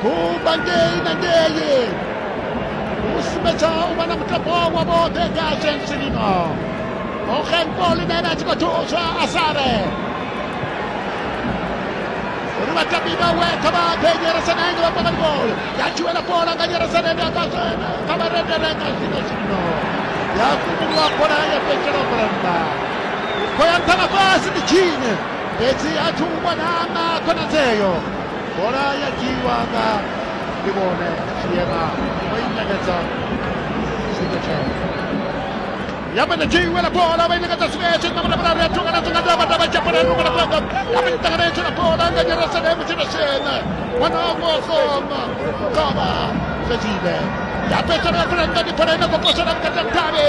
Kumbangei na ngei kusumetsa u vha na mutambo wa vhoṱhe nga tshentsi lino ogenpo line na tshi khou thuswa a sale uri vhatambi vhawe kha vha ḓe nyeresanenge vha pangani bolo ya tshiwela bola nga nyeresanende kha vha rendele nga zwino zwino ya fhumulwa bola ya fhetshela u khou ya nṱha na fhasi ndi tshine fhedzi a thi u vhona na khonadzeo bola ya dzhiiwa nga ndi vhone tshiema o i ṋekedza sigetshen ya mene dzhiiwela bola vha i ṋekedza sigetshen na muravhuraru ya thunga na dzonga ndavha ndavha tshapana ri vhona fhedza ya mene ṱanganetsho na bola nga nyaraselemu tshena shena wana vosoma kavha sedzile ya fhedzisela ya fhela nga ndi bola ine khou posela vhukati ha mutale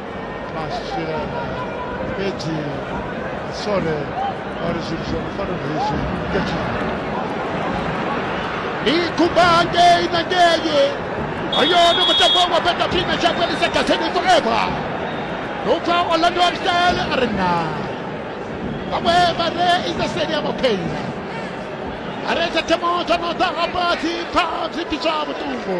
12 fhedzi sole vha ri zwithu zwa mufano hezwi ya tshifha ni kumba ngei na ngei hoyo ni mutambo wa peta phina tsha vhuelisa gaseni forever ndo pfa orlando absel a ri na vhaṅwe vha re isa seli ya mapheina a re tsha themo tsho no ḓa hafha dzi pfa zwi pfiswa vhuṱungu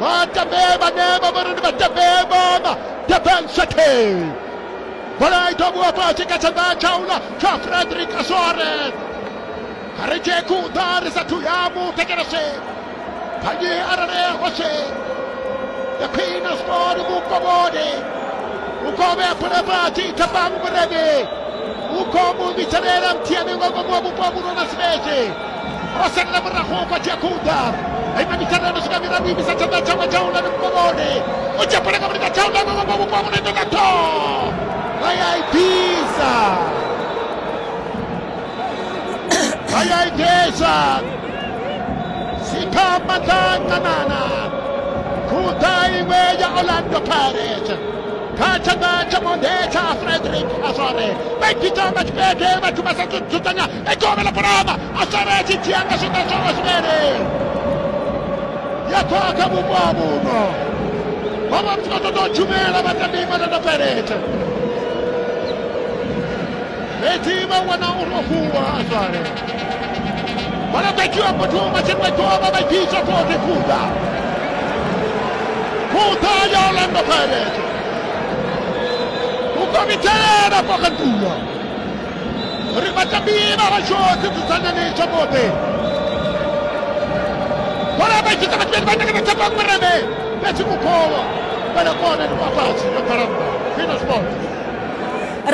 Matabeba neba vha ri ndi matabeba ma Durban City. Bola i ḓo vhuwa fhasi kha tshanḓa tsha uḽa tsha Frederick Soares. A ri tshee khuḓa ri sathu ya mu thetshelese. Kanzhi arali hoshe ya khwine sport vhukovhoni. Vhukove a phule fhasi Thabang Murevhe. Vhukomu vhitselela muthiani nga ngomu wa vhupo vhulwa na sibese. o sendela murahu kwa dzhia khouda aima mithara yo no swika miraru imisa tshanḓa tshawe tsha u lani vhupomoni u dzhia bola nga mulika tsha u lani vhupo vhupo ha mulendo nga tho vha ya i bvisa vha ya i bvisa sikha maḓa nganana khouda iṅwe ya orlando pirates kha tshanḓa tsha monde tsha frederick azore vha ipita nga tshipede vhathu vha sa dzudzanya e gome ḽa phalama a sala a tshi dzhia nga zwiṱa zwawe zwivhele ya khwaha kha vhupo ha vhuno vha vha muthu vha ṱoḓa u tshumela vha tandima tanda pelete fhedzi vha wana uri o fhungwa a swale vhona ḓa dzhiwa muthu matsheni vha dzhiwa vha vha dzhiisa fote khuḓa khuḓa ya orlando pirate u komitelela fo kha nḓuwa ri vhatambi vha vhashu dzi dzudzanyani tshapope bola vha ita vhathu vhane vha takana tshapo mureme na tshimukhowo vhana kona ni kwafhatshi yo bvalamba fino sport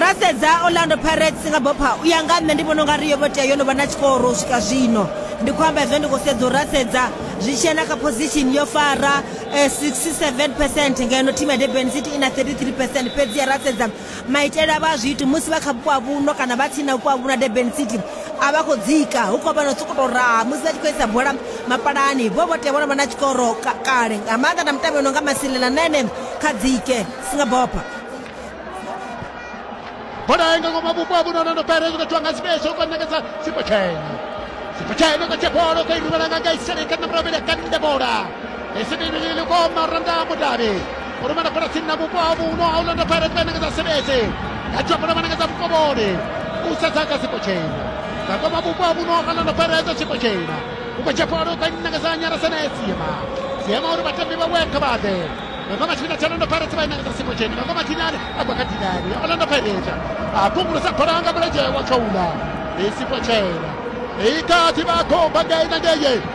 ra sedza orlando pirates nga bopha u ya nga nṋe ndi vhona unga ri yo vho tea yo no vha na tshikoro u swika zwino ndi khou amba hezwo ndi khou sedza u ra sedza zwi tshi na kha position yo fara 67 eh, percent ngeno thimu ya durban city i na 33 percent fhedzi ya ra sedza maitele a vha a zwi iti musi vha kha vhupo ha vhuno kana vha tsini na vhupo ha vhuno ha durban city a vha khou dzika hu khou vha no sokoto raha musi vha tshi khou isa bola mapalani vho vho tea vho no vha na tshikoro ka- kale nga maanḓa na mutambi no nga masilela na ene kha dzike singabopha bola nga ngoma vhupo ha vhuno no pere zwi khathiwa nga sibesho kwa nekeza sipotshene sipotshene ka tshebolo ka irivhala nga nga isele ka namra bele ka nda bola esebele le ko maranda mudari o rumela bola tsini na vhupo ha vhuno a u landa pirate vha ṋekedza sebese ya dzhia bola vha ṋekedza vhukovhoni u sedza kha siko tshena dza kwama vhupo ha vhuno a landa pirate siko tshena u khou dzhia bola u khou ṋekedza nyala senee siema siema uri vhatambi vhawe kha vha ḓe Mama Machina Orlando Pirates vha inakisa siko tsheni Mama Machina a baka dinani Orlando Pirates a kungulusa bola nga mulenzhe wa khoula i siko tshena i kati vha khou baka ina ngeye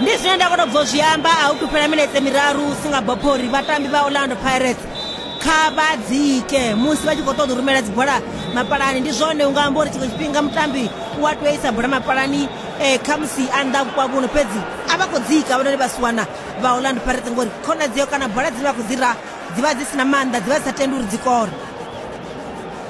ndi zwine nda kona bvo zwi amba a hu thu fhela minetse miraru u singa bopho uri vhatambi vha orlando pirates kha vha dzike musi vha tshi khou ṱoḓa u rumela dzibola mapalani ndi zwone u nga amba uri tshiṅwe tshifhinga mutambi u a tea isa bola mapalani um khamusi a nnḓa vhukwavhuno fhedzi a vha khou dzika vhononi vha siwana vha orlando pirates ngori khonadzeo kana bola dzine vha khou dzi ra dzi vha dzi si na maanḓa dzi vha dzi sa tendi uri dzi kore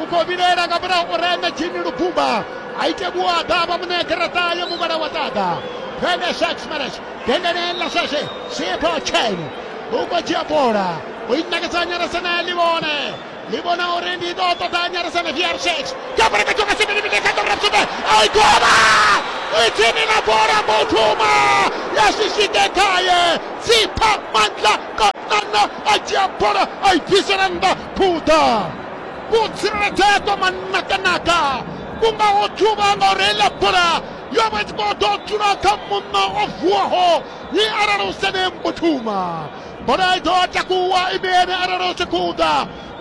u khou vhilaela nga mulayo uri ene jini lubumba a ite vhuaḓa a vha muṋe garaṱa ya muvhala wa ṱaḓa vele sharks maras dendeneni ḽa sweswe sipho chene u khou dzhia bola u i nakisa nyaresana ḽi vhone ḽi vhona uri ndi ḓo ṱoḓa nyaresana vr sharks kha bola ka tshoka sibelebile kha ḓorra sumbe a i gola i tsini na bola mutuma ya shishike khaye sipha mandla kanana a dzhia bola a i bvisela nnḓa phuḓa vho tsireledzea to manakanaka ku nga ho thuba nga u reila bola yo vha tshi khou ḓo dzula kha muṋo o vuwaho ni arali u sene mbuthuma bola i ḓo takuwa ine ene arali u tshi khou ḓa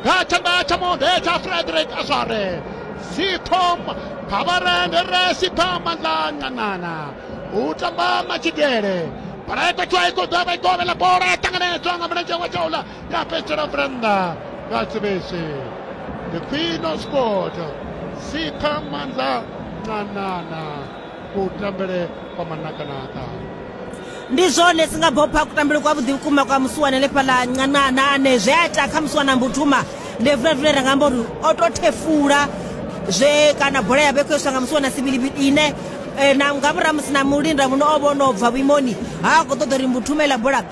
nga tshanḓa tsha monde tsha frederick azware sithom khavarende re sipha mandla nganana u tamba matshidele bola i khou tswa i khou ḓa vha i kovhela bola ya ṱanganedzwa nga mulenzhe wa tshaula Ja pitcher op Brenda. Gatsubishi. The Queen of Sport. Sipha Mandla Ncanana. Kutambele kwa manakanaka. ndi zwone singabopha kutambele kwa vhuḓi vhukuma kwa musiwana lefhala ncanana ane zwe a ita kha musiwana mbutuma ndi vulavule ra nga amba uri o to thefula zwe kana bola ya vhe khou iswa nga musiwana sibilibili ine eh, na nga murahu musi na mulinda muno o vhono bva vhuimoni ha khou ṱoḓa uri mbutuma iḽa bola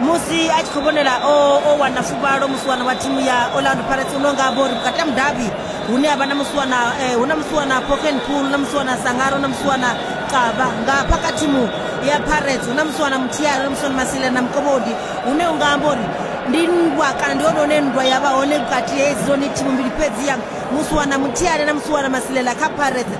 musi a tshi khou vhonela o o wana fuvhalo musiwana wa thimu ya orlando pirates uno nga bori vhukati ha mudabi hune ha vha na musiwana eh, hu na musiwana poken pool na musiwana sangaro na musiwana qaba nga phaka thimu ya pirates hu na musiwana muthiari na musiwana masile na mukovhodi hune u nga amba uri ndi nndwa kana ndi hone hune nndwa ya vha hone vhukati hedziloni thimu mbili fhedzi ya musiwana muthiari na musiwana masilela kha pirates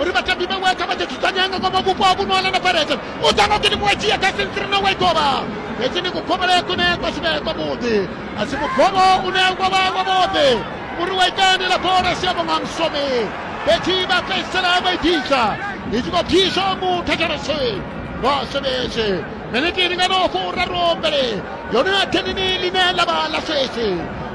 uri vhatambi vhe weka vha ḓi dzudzanya nga ngomu vhupo ha vhuno alana pirates u ḓa ngokini muṅwe dzhia kha sentri na wekova heki ndi kugovhele kune kwa sivhe kwa vhuḓi a si mugovo une wa vha wa vhuḓi uri wa itandela bola siabo nga msomi fhedzi vha fhedzisela vha i bvisa i tshi khou bviswa muthathalasi wa swebetshi miniti lingano furaru mbele yone ya thenini line ḽa vha ḽa swesi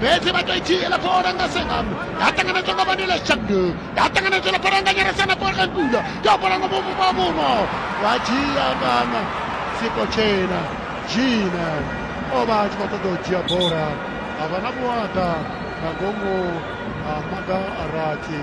fhedzi vha to i dzhiela bola nga sengam ya ṱanganedzwa nga vanila shandu ya ṱanganedzwa na bola nga nyarasana bola ngula ya bola nga mumu wa muno vha dzhia ngana siko tshena dzhina o vha a tshi khou ṱoḓa u dzhia bola a vha na vhuaḓa nga ngomu ha maga a rathi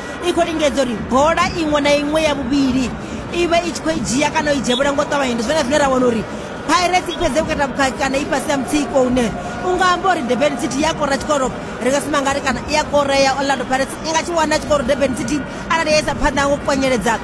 i khou lingedza uri bola iṅwe na iṅwe ya vhuvhili i vhe i tshi khou i dzhia kana o i dzhevhula ngo ṱavhanya ndi zwone zwine ra wana uri pirates i fhedze vhukata vhukhakhi kana i fhasi ya mutsiko une u nga amba uri durban city i a kora tshikoro ri nga sima ngari kana i a korea orlando pirates i nga tshi wana tshikoro durban city arali ya isa phanḓa ngo kwanyeledza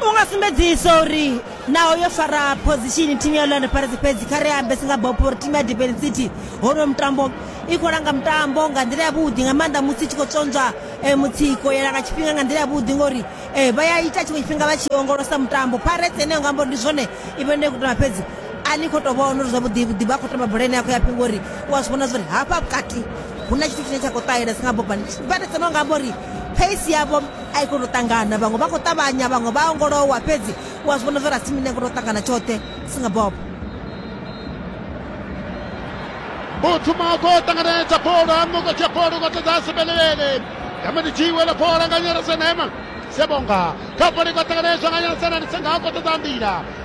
u nga sumbedzisa uri naho yo fara phozishini thimu ya orlando pirates fhedzi kha ri ambe si nga bopo uri thimu ya durban city honoyo mutambo i khou langa mutambo nga nḓila yavhuḓi nga maanḓa musi i tshi khou tsonzwa um eh, mutsiko ya langa tshifhinga nga nḓila yavhuḓi ngori um vha ya ita tshiṅwe tshifhinga vha tshi ongolosa mutambo pirates eneyo nga ambo ndi zwone i vha ine i khou tamba fhedzi a ni khou tou vhona uri zwavhuḓi vhuḓi vha khou tamba bola ine ya khou ya phingo uri u a zwi vhona zwa uri hafha vhukati hu na tshithu tshine tsha khou ṱahela si nga bopa vha tou sema nga amba uri pace yavho a i koni u ṱangana vhaṅwe vha khou ṱavhanya vhaṅwe vha ongolowa fhedzi u a zwi vhona zwo ra simine koni u ṱangana tshoṱhe singa bob buthuma u khou ṱanganedza bola hanu khou dzhia bola u khou ṱoḓa sebelevele yame ndi dzhiwe ḽa bola nga nyarasena ema sebonga kha bola i khou ṱanganedzwa nga nyarasena ndi senga u khou ṱoḓa nḓila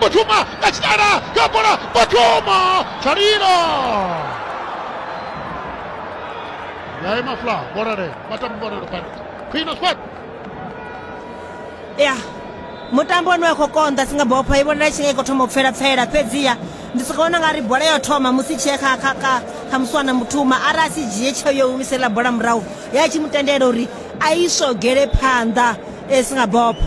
Fatuma kachitana kapola Fatuma Chariro yayi mafla bonare matambo bonare pano Queen Sport ya mutambo wani wa khou konḓa singabopha i vhonala tshi nga i khou thoma u pfela pfela fhedziha ndi soka vhona nga ri bola yo thoma musi tshee kha kha kha kha musiwana muthuma arali a si dzhie tsheo yo humisela bola murahu ya tshi mu tendela uri a isogele phanḓa e singabopha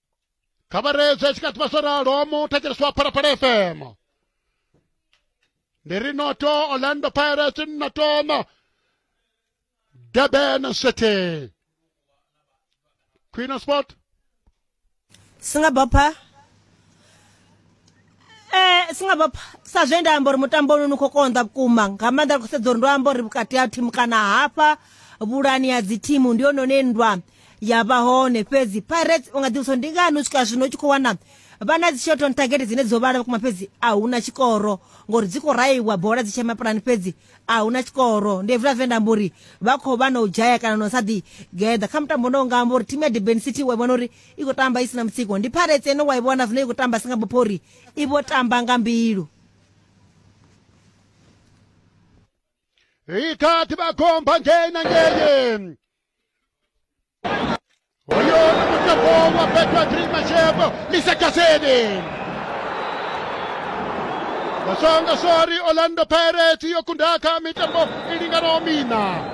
kha vha reedzwe tshi kha ḓivha zwo ralo mu thetsheleswa phalaphala fm ndi ri noto orlando pirates noto no durban city queen of sport singabopha Eh, singabapha sa zwe nda amba uri mutambo uno ni khou konḓa vhukuma nga maanḓa ri khou sedza uri ndo amba uri vhukati ha thimu kana hafha vhulani ya dzithimu ndi yone une nndwa ya vha hone fhedzi pirates u nga ḓivhisa ndi ngani u swika zwino u tshi khou wana vha na dzishot on target dzine dzo vhala vhukuma fhedzi a hu na tshikoro ngori dzi khou raiwa bola dzi tshema pulani fhedzi a hu na tshikoro ndi hezwiḽa zwe nda amba uri vha khou vha na u dzhaya kana na u sa ḓi geḓa kha mutambo no nga amba uri thimu ya durban city wa vhona uri i khou tamba i si na mutsiko ndi pirates ene wa i vhona zwino i khou tamba si nga bupho uri i vho tamba nga mbilu ikati bakhomba ngena ngeye oyo mutambo wa petwa trima shebo lisakaseni basonga sori orlando pirates yokundaka mitambo ilingano mina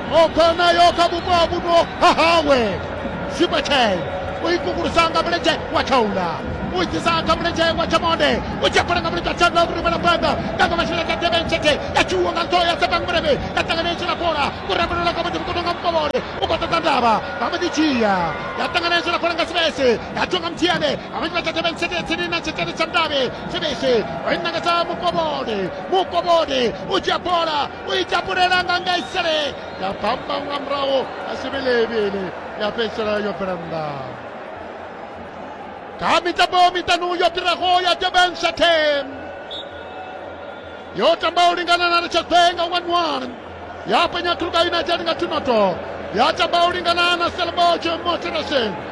ogona yo kha vhupo ha vhuno ha hawe sipatshel u ikukulusa nga mulenzhe wa tshaula u itisa kha mulenzhe wa tshamonde u tshi fhela nga mulenzhe wa tshaula uri vhala phanḓa nga nga masheleni ka tebe ntshete ya tshiwo nga ntho ya tsepang mulevhe ya ṱangana itshila bola u rembelelwa ka muḓimu kono nga mukovhole u khou ṱoḓa ndavha vha mbo ḓi dzhia ya ṱangana itshila bola nga sibese ya tshiwo nga muthiane ha vhanzhi vha tsha tebe ntshete tsini na tshetele tsha ndavhe sibese o i ṋangedza mukovhole mukovhole u dzhia bola u i tapulelanga nga isele ya bamba nga murahu a si vhe levhele ya fhedzisela yo bvela nnḓa kha mitambo miṱanu yo fhiraho ya durban shatem yo tamba u lingana na richardbe nga wanwan ya penya kruga united nga tunoto ya tamba u lingana na selboch moterashen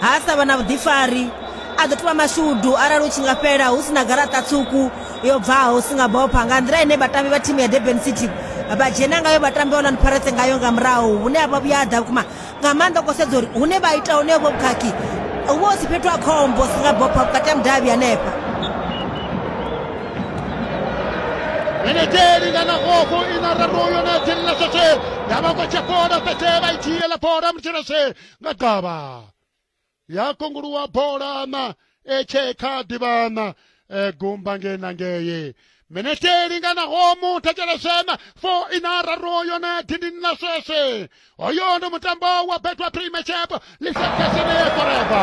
ha sa vha na vhuḓifari a ḓo tovha mashudu arali u tshi nga fhela hu si na garaṱa tswuku yo bvaho si nga bopha nga nḓila ine vhatambi vha thimu ya durban city vha dzhena ngayo vhatambi oland pirates ngayo nga murahu hune a vha vhuya ḓa vhukuma nga maanḓa ko sedza uri hune vha ita hone vho vhukhakhi hu vha hu si fhethu ha khombo si nga bopha vhukati ha mudavhi hanefha Benedeli kana gogo ina raroyo na tshirina shashe ya ba kwa tshapora fete ba ithiela pora mtshirashe nga gavha ya kunguluwa bola na etshe kha ḓivha na eh, gumba ngei na ngei minete i linganaho muthetsheleshena fo ina raru yone dindini ḽa sweswe hoyo ndi mutambo wa betwa primachapo lisakeshene ya koreba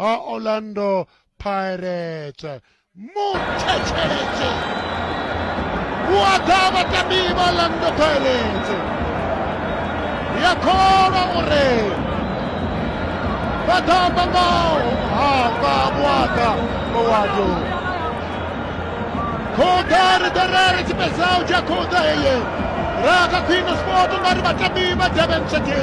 ha orlando pirates muthetsheledzo hu a ḓa vhatambi vha orlando pirates ya kholwa uri vha tamba ngaho hafha vhuaḓa mawado khoḓa ri ḓo rere tshipedzao tsha khoḓa heye ra kha khwino sport nga ri vhatambi vha durban city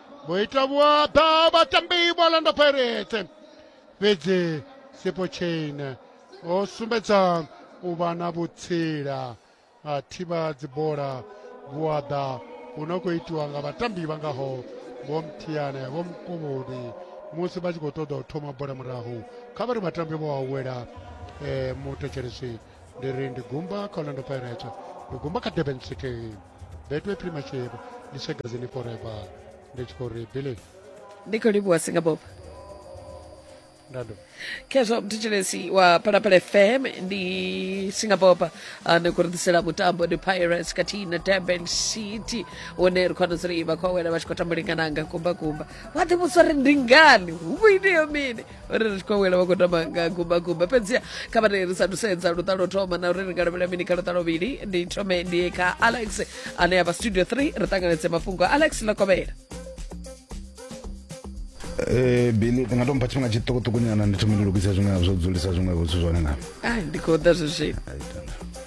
muita vhuaḓa vhatambi vha landa pirate fhedzi sipo chain o sumbedza u vha na vhutsila a thivha dzibola vhuaḓa hu no khou itiwa nga vhatambi vha ngaho vho mthiyane vho mkuvhudi musi vha tshi khou ṱoḓa u thoma bola murahu kha vha ri vhatambi vho awela um eh, muthetshelesi ndi ri ndi gumba kha orlando pirate ndi gumba kha durban city betway premiership ndi shagazini forever ndi tshi khou ri billy ndi khou livhuwa singapore ndado khezwo mthetshelesi wa phalaphala fm ndi singapore uh, ndi khou ri ḓisela mutambo ndi pirates khathihi na durban city une ri khou wana zuri vha khou awela vha tshi khou tambulingana nga kumbakumba vha ḓivhudzwa uri ndi ngani hu vho ineyo mini uri ri tshi khou wela vha khou tamba nga gumbagumba fhedziha kha vha ri sa thusedza luṱa lwo thoma na uri ri nga lavhelela mini kha luṱa lwovhili ndi thome ndi ye kha alex ane avha studio 3 ri ṱanganedze mafhungo alex lokovhela Eh Billy ndi nga to mpha tshifhinga tshiṱukuṱuku nyana ndi thome ndi lugise zwiṅwe zwo dzulisa zwiṅwe vhuthu zwone nga. Ai ndi khou ḓa zwi zwino.